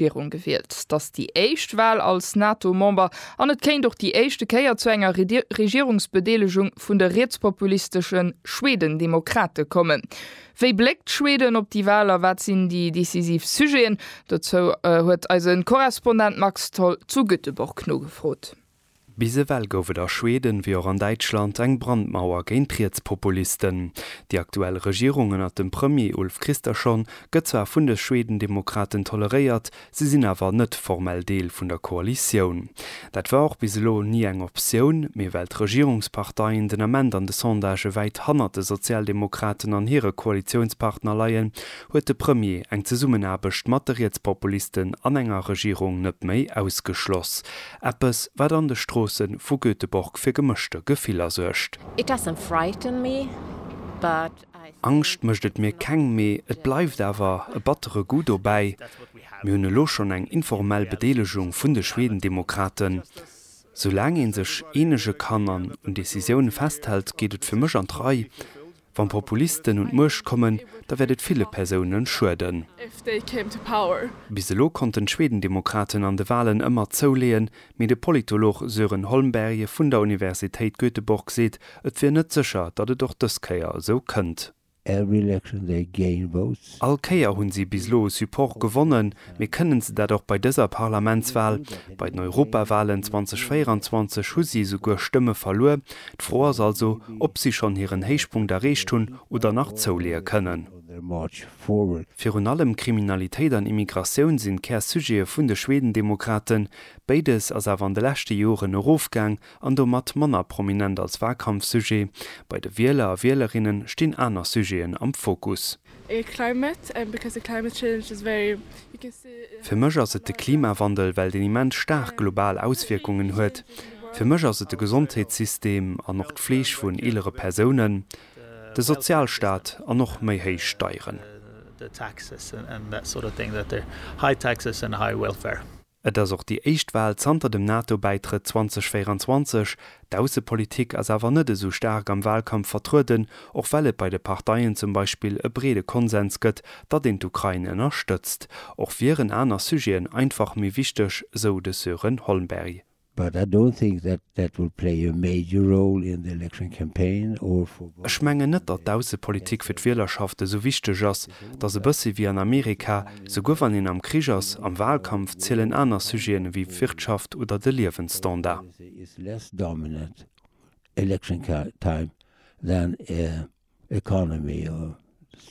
Virun gewielt. Et ass déi éischt Wal als NATO-Member an et kéint och déi éischte Kéier zu enger Regierungsbedeelegung vun de rietspopulistesche Schwedendemokrate kommen. Wéi bléckt Schweden op déi Wal a wat sinn déi decisiv Sujeten? Dozou huet eise Korrespondent Max Tholl zu Göteborg nogefrot. Bis ewell gouf et a Schweden, wéi och an Däitschland, eng Brandmauer géint Rietspopulisten. Déi aktuell Regierung ënnert dem Premier Ulf Kristersson gëtt zwar vun de Schwedendemokraten toleréiert, si sinn awer net formell Deel vun der Koalitioun. Dat war och bis elo ni eng Optioun, mee well d'Regierungsparteien den Ament an de Sondagë wäit hannert de Sozialdemokraten an hire Koalitiounspartner leien, huet de Premier eng Zesummenaarbecht mat de Rietspopulisten an enger Regierung net méi ausgeschloss. Eppes, wat an de Stroosse vu Göteborg fir gemëschte Gefiller suergt. It doesn't frighten me, but I think. Angscht mécht et mir keng, mee et bleift awer e battere Goût dobäi. Mir hunn elo schonn eng informell Bedeelegung vun de Schwedendemokraten. Soulaang ee sech eenege kann an un Decisioune festhält, geet et fir mech an d'Rei. Wann Populisten un d'Muecht kommen, da wäert et ville Persounen schueden. Bis elo konnten d'Schwedendemokraten an de Walen ëmmer zouleeën, mee de Politolog Sören Holmberge vun der Universitéit Göteborg seet, et wier net sécher, datt et och dës Kéier esou kënnt. All Kéier hunn si bis elo Support gewonnen, mee kënnen se dat och bei dëser Parlamentswal? Bei den Europawalen 2024 hu si esouguer Stëmme verluer. D'Fro ass also, ob si schonn hiren Héichpunkt erreecht hunn oder nach zouleeë kënnen. Virun allem Kriminalitéit an Immigratioun sinn d'Kär-Sujete vun de Schwedendemokraten. Béides ass awer an de leschte Joren erofgaang, an domat manner prominent als Wahlkampfsujet, bei de Wieler a Wielerinnen stinn aner Sujeten am Fokus. Fir mech ass et de Klimawandel, well deen immens staark global Auswierkungen huet. Fir mech ass et de Gesondheetssystem an och d'Fleeg vun eelere Persounen, de Sozialstaat an och méi héich Steieren. Et ass och déi éischt Wal zanter dem NATO-Bäitrëtt 2024. D'Aussepolitik ass awer net esou staark am Walkampf vertrueden, och well et bei de Parteien zum Beispill e breede Konsens gëtt, datt een d'Ukrain ënnerstëtzt. Och wieren aner Sujeten einfach méi wichteg, sou de Sören Holmberg. But I don't think that that will play a major role in the election campaign or for voting. Ech mengen net, datt d'Aussepolitik fir d'Wielerschaft esou wichteg ass. Et ass e bëssi wéi an Amerika, souguer wann een am Krich ass, am Wahlkampf zielen aner Sujeten ewéi d'Wirtschaft oder de Liewensstandard. Election policy is less dominant election time than economy or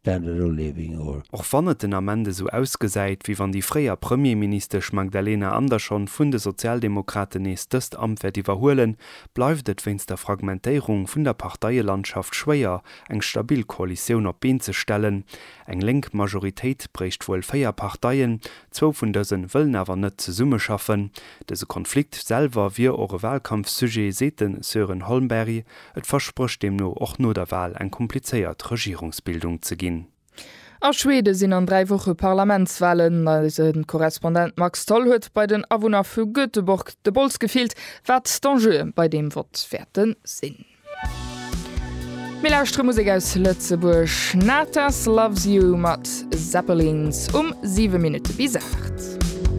standard of living or. Och wann et den Ament esou ausgesäit, wéi wann déi fréier Premierministesch Magdalena Andersson vun de Sozialdemokraten nees dëst Amt wäert iwwerhuelen, bleift et wéinst der Fragmentéierung vun der Parteielandschaft schwéier, eng stabil Koalitioun op d'Been ze stellen. Eng lénk Majoritéit bréicht wuel véier Parteien, zwou vun dëse wëllen awer net zesummeschaffen. Dëse Konflikt selwer wier och e Walkampfsujet, seet de Sören Holmberg. Et versprécht deemno och no der Wal eng komplizéiert Regierungsbildung ze ginn. A Schweden sinn an 3 Woche Parlamentswalen. Eise Korrespondent Max Tholl huet bei den Awunner vu Göteborg de Bols gefillt, wat d'Enjeue bei deem Vott wäerte sinn. Mir lauschtere Musek aus Lëtzebuerg, Natas Loves You mat Zeppelins um 7 Minutte bis 8.